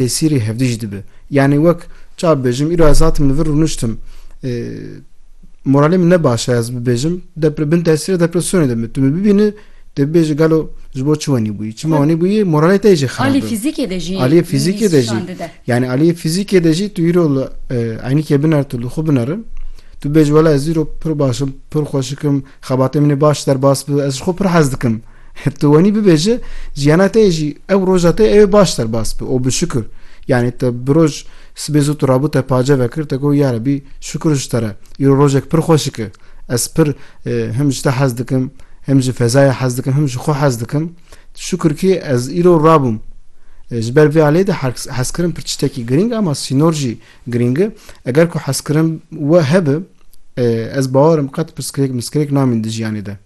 Êsîrê hevdî jî dibe. Yanî wek çawa bibêjim, îro ez hatim li vir rûniştim. Moralê min ne baş e ez bibêjim, depre bin tesîra depresyonê de me. Tu me bibînî dê bibêjî gelo ji bo çi wenî bûyî? Çima wenî bûyî moralê te yê jî xerab e. Aliyê fîzîkê de jî Aliyê fîzîkê de jî nîşan dide. yanî aliyê fîzîkê de jî tu îro li eynîkê biner tu li xwe binirin. Tu bibêjî wela ez îro pir baş im, pir xweşik im, xebatê min ê baş derbas bi, ez ji xwe pir hez dikim. Tu wenî bibêje jiyana te yê jî ew roja te ew baş serbas bi û bi şukir. Yanî te bi roj sibê zû tu rabû te pace vekir te got yarebî şukir ji te re îro rojek pir xweşik e. Ez pir him ji te hez dikim, him ji fezayê hez dikim, him ji xwe hez dikim. Şukir kî ez îro rabûm. Ji ber vê aleyê de hezkirin pir tiştekî girîng e ama sînor jî girîng e. Eger ku hezkirin we hebe ez bawer im qet pirsgirêk mirsgirêk namîn di jiyanê de.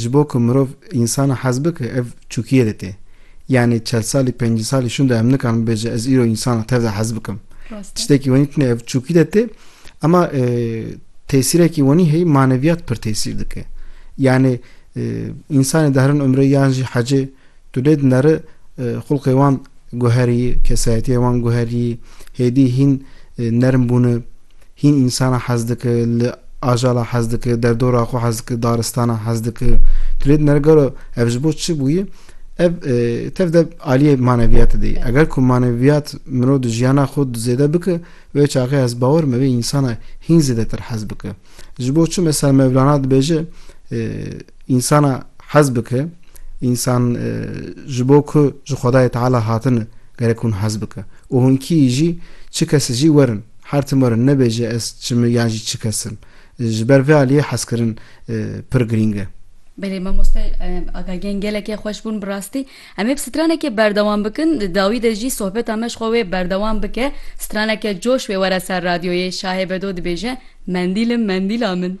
Ji bo ku mirov însan hez bike ev çûkiyê de tê. Yanî çel salî pêncî salî şûnde em nikarin bibêje ez îro însan tev de hez bikim. Tiştekî wenî tune ev çûkî de tê ema tesîrekî wenî heyî maneviyat pir tesîr dike. Yanî însanê dahrin umrê yan jî hecê Tu lê dineri xulqê wan guherî, kesayetiyê wan guherî, hêdî hîn nerm bûne, hîn însana hez dike, li ajala hez dike, derdora xwe hez dike, daristana hez dike. Tu lê dineri gelo ev ji bo çi bûye? Ev tev de aliyê maneviyatê de ye. Eger ku maneviyat mirov di jiyana xwe zêde bike, wê çaxê ez bawer me wê însana hîn zêdetir hez bike. Ji bo çi mesela Mevlana dibêje insana hez bike insan ji bo ku ji Xwedayê Teala hatine gerek hûn hez bike û hûn kî jî çi kesî jî werin her tim werin nebêje ez çi me yan jî çi kesim ji ber vê aliyê hezkirin pir girîng e. Belê mamoste agahiyên gelekê xweş bûn bi rastî. Em ê bi stranekê berdewam bikin, di dawî de jî sohbeta me ji xwe wê berdewam bike, straneke coş wê were ser radyoyê, şahê bedo dibêje, Mendîl im, mendîla min.